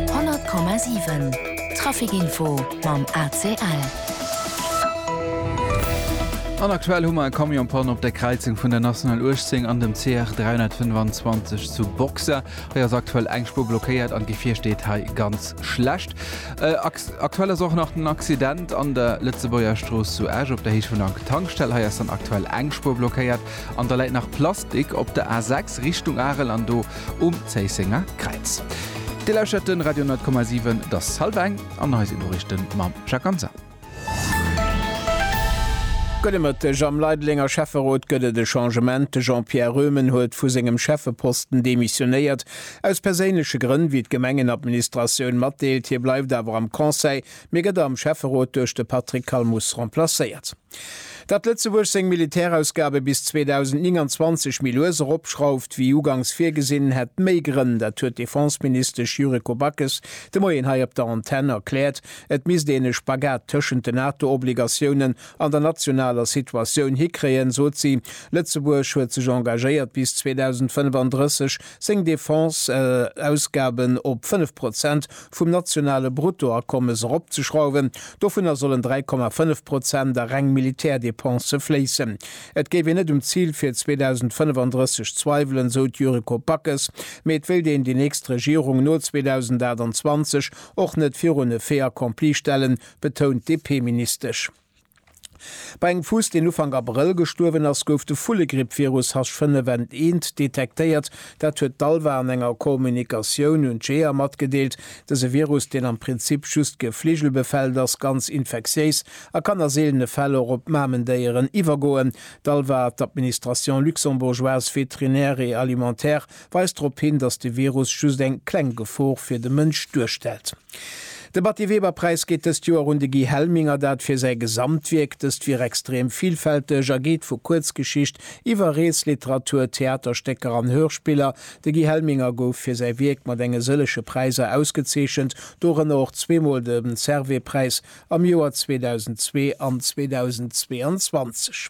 100,7 Traficinfo mam ACL. An aktuell hu mer e Camionspanne op der Kräizung vun der National 18 an dem CR 325 zu Boxer. Hei ass aktuell eng Spuer blockéiert an d'Gefier steet hei ganz schlecht. Äh, aktuell ass och nach den Accident an der Lëtzebuerger Strooss zu Esch op der Héicht vun der Tankstell. Hei ass dann aktuell eng Spuer blockéiert. An da läit nach Plastik op der A 6 Richtung Arel an do um Zéissenger Kräiz. Dir lauschert de Radio 10,7, et ass hallef eng an hei sinn d'Noriichte mam Jacques Hansen. Gudde Mëtteg. Am Leidelenger Schäfferot gëtt et e Changement. De Jean-Pierre Röhmen huet vu sengem Schäffeposten demissionéiert, aus perséinleche Grënn, wéi d'Gemengenadministratioun matdeelt. Hie bleift awer am Conseil, mee gëtt am Schäfferot duerch de Patrick Calmus remplacéiert. Datt Lëtzebuerg seng Militärausgabe bis 2029 méi lues eropschrauft wéi ugangs virgesinn, hätt méi Grënn. Dat huet d'Defenseministesch Yuriko Backes de Moien hei op der Antenn erkläert. Et misst een e Spagat tëschent den NATO-Obligatiounen an der nationaler Situatioun hikréien, sot si. Lëtzebuerg huet sech engagéiert, bis 2035 seng Defense-Ausgaben op fënnef Prozent vum nationale Bruttoakommes eropzeschrauwen, dovunner sollen 3,5 Prozent a reng Militärdepensë fléissen. Et géif een net um Zil fir 2035 zweiwelen, sou d'Yuriko Backes, mee et wéilt een déi nächst Regierung no 2028 och net virun e Fait accompli stellen, betount d'DP-Ministesch. Bei engem Fuuss, deen Ufank Abrëll gestuerwen ass, gouf de Vullegrippvirus H5N1 detektéiert. Dat huet d'ALVA an enger Kommunikatioun un d'Jeeër matgedeelt. Dëse Virus, deen am Prinzip just gefligelbefellend ass, ganz infektiéis a kann a seelene Fäll och op Mamendéieren iwwergoen. D'ALVA, d'Administration luxembourgeoise vétérinaire et alimentaire, weist drop hin, datt de Virus just eng kleng Gefor fir de Mënsch duerstellt. De Batty-Weber-Präis geet dëst Joer un de Guy Helming, a dat fir säi Gesamtwierk. Dëst wier extrem villfälteg a geet vu Kuerzgeschicht iwwer Reesliteratur, Theaterstécker an Hörspiller. De Guy Helminger gouf fir säi Wierk mat enge sëllege Präiser ausgezeechent, dorënner och zweemol de Servais-Präis am Joer 2002 an 2022.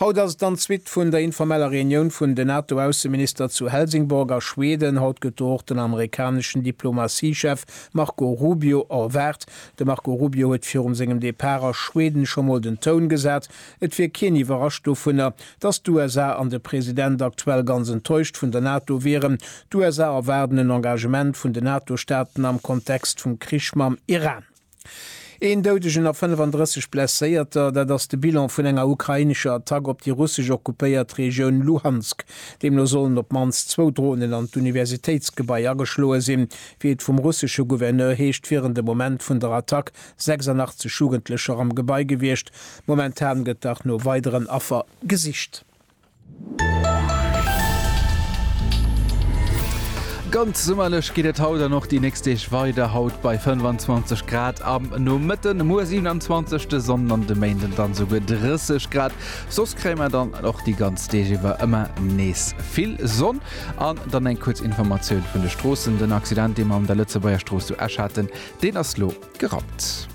Haut ass et dann d'Suite vun der informeller Reunioun vun den NATO-Ausseminister zu Helsingborg a Schweden. Haut gëtt do och den amerikaneschen Diplomatiechef Marco Rubio erwaart. De Marco Rubio huet virum sengem Depart a Schweden scho mol den Toun gesat. Et wier keen iwwerrascht dovunner, datt d'USA an de President aktuell ganz enttäuscht vun der NATO wieren. D'USA erwaarden en Engagement vun den NATO-Staaten am Kontext vum Krich mam Iran. Een Doudegen a 35 Blesséierter, dat ass de Bilan vun enger ukrainescher Attack op déi russesch okkupéiert Regioun Luhansk. Deemno sollen op d'mannst zwou Dronen an d'Universitéitsgebai ageschloe sinn. Wéi et vum russesche Gouverneur heescht, wieren de Moment vun der Attack 86 Jugendlecher am Gebai gewiescht. Momentan gëtt dach no weideren Affer gesicht. Ganz summerlech geet et haut an och déi nächst Deeg weider, haut bei 25 Grad am Nomëtten, muer 27 de Sonn an de Méinden dann esouguer 30 Grad. Soss kréie mer dann och déi ganz Deeg iwwer ëmmer nees vill Sonn. An dann eng kuerz Informatioun vun de Stroossen, Den Accident, dee mer an der Lëtzebuerger Strooss zu Esch haten, deen ass elo gerappt.